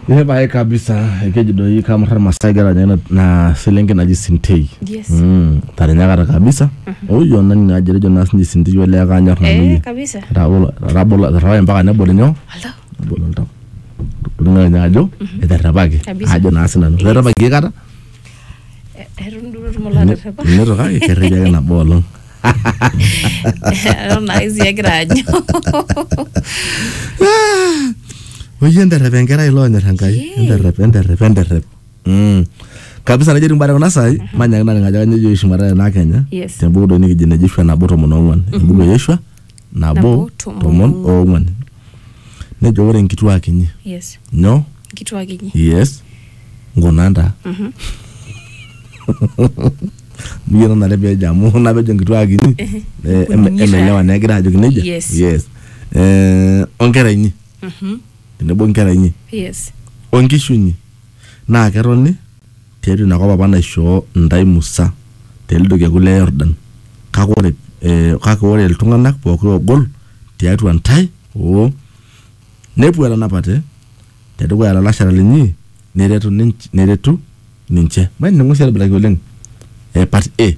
Ee pae kabisa ekeji doi kamurra irmaasai kera ninye na- na selenke naji sintei Yes. Mm, tarinyakata kabisa oyo nani naji etejo naa sinye sintei olee kanyor nanu Eh, yie kabisa. Etabolo- etabolo- eterrepae mpaka nebol inyoo Aldo. nebol oltau Toltung'ani ajo eterrepaki Kabisa. ajo naa sinanu eterrepaki aikata eton duo etum olaterrepa Ninoto kake kerreja ake nabo olong. eton naa isi egira anyu Ah! Oyie enterrep enkerai ilo onyor Enkai. Yee. Enterrep, enterrep, enterrep. Mm. Kabisa nejo timbare kuna sai, manyaki naleng ajo kanyo ejo Yeshua metaa ena Kenya. Yes. Te buku doi nikijo ene Joshua nabo tomon ong'uan. Embuku e Yeshua nabo Nabo, tomon tomon oong'uan. oong'uan nejo ore nkituak inyi yes nyoo nkituak inyi yes nkuna ntaa miyie nanare pejo amu napejo nkituak inyi eh, em- Kunyi taa. emelewa naa egira ajoki nejia Yes. yes Eh, onkera inyi tenebo nkera inyi yes onkishu inyi naa ketoni Tiatua ina kop apa naishoo intae Musa, te lido kekun le Yordan, kake ore iltung'ana pooki oogol tiatua intae o nepuo etanapate te dukuya lalashera linyi neretu ninche. Mainining'o sii aitobiraki oleng part A.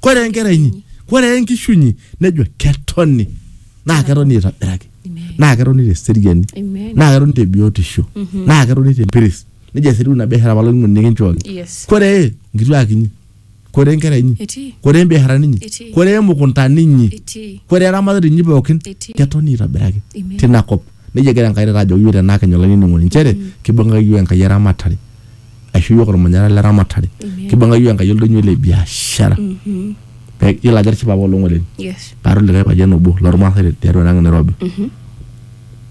kore enkera inyi kore enkishu inyi nejo ketoni naa ketoni aitobiraki naa ketoni te seriani Amen. naa ketoni te biotisho naa ketoni te mpiris nejo eseriu ina biashara apa olainining'oni nikinchooki Yes. kore nkituak inyi kore nkera inyi Etii. kore mbiasharani inyi Etii. kore mukuntani inyi Etii. kore eramatare inyi pookin Etii. ketoni aitobiraki Amen. tina kop nejia egira enkai taata ajoki yiok tenaa kenye olainining'oni nchere kibung'aki yiok enkai eramatare aisho iyiook ormanyara le ramatare Amen. kibung'a iyiook enkai oldonyo le biashara Mhm. Pe- yiolo ajo atishipa apaelong oleng Yes. paata olikae payian obo lormaasai te- tiatua enang nairobi Mhm.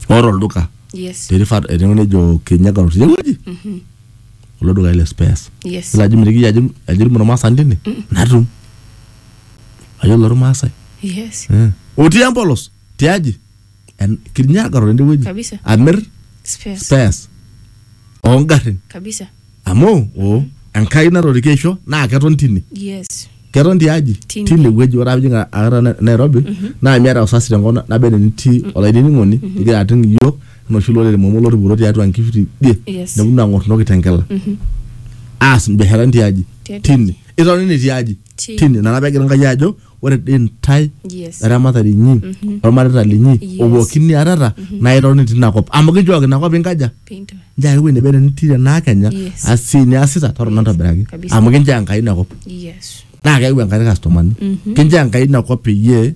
oota olduka Yes. terifat enewueji nejo kinyaga road tiewueji Mhm. kulo dukai le spares Yes. yiolo ajo mitiki iyie ajo ajo itum ormaasani tine natum ayiolo ormaasai Yes. Eh. otii empolos tiaji en- kinyagaro tende wueji Kabisa. amir Spares. spares oongarrin Kabisa. amu o enkai natoriki aisho naa keton tine Yes. keton tiaji Tine. tine wueji ore apijing akata Na- nairobi naa miata usasi tenkop na- naba enaa enitii olainining'oni igira ating iyiok enoshi lorere momo lotupuro tiatua nkishu tidie Yes. neponu ang'or ntoki tenkela aas mbiasharani tiaji Tiatua tine itoni tiaji Ti- tine nana pegira nkai ajo ore dei ntae Yes. eramatare inyi olmareita linyi Yes. opooki niatata naa itoni tina kop amu kijooki ina kop inkaja Pinto. njaa ewuei nebo enitire naa kenya Yes. asi niasita torrono ntobiraki Kabisa. amu kinchoo enkai ina kop Yes. naa keyau enkai kastomani kinchoo enkai ina kop peyie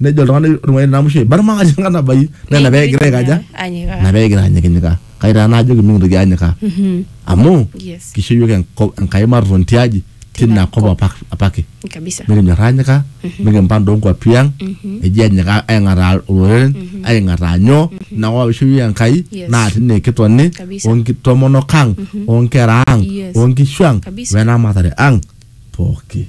nejo oltung'ani ormuai namusho eibarma ajo enkanabai naa ina pee egira aikaja Anyikaa. ina pee egira anyikinyikaa kai taa naajoki mikintoki anyikaa Mhm. amu Yes. kisho yiok enko- enkai matoton tiaji tina kop apa- apake Kabisa. mikinyor anyika mikimpang toonkuapi ang eji anyika aing'ataa oloreren aing'ataa nyoo inakop apa isho yiok enkai Yes. naa tine kitoni Kabisa. onkitomonok ang onkera ang Yes. onkishu ang Kabisa. wenaramatare ang pooki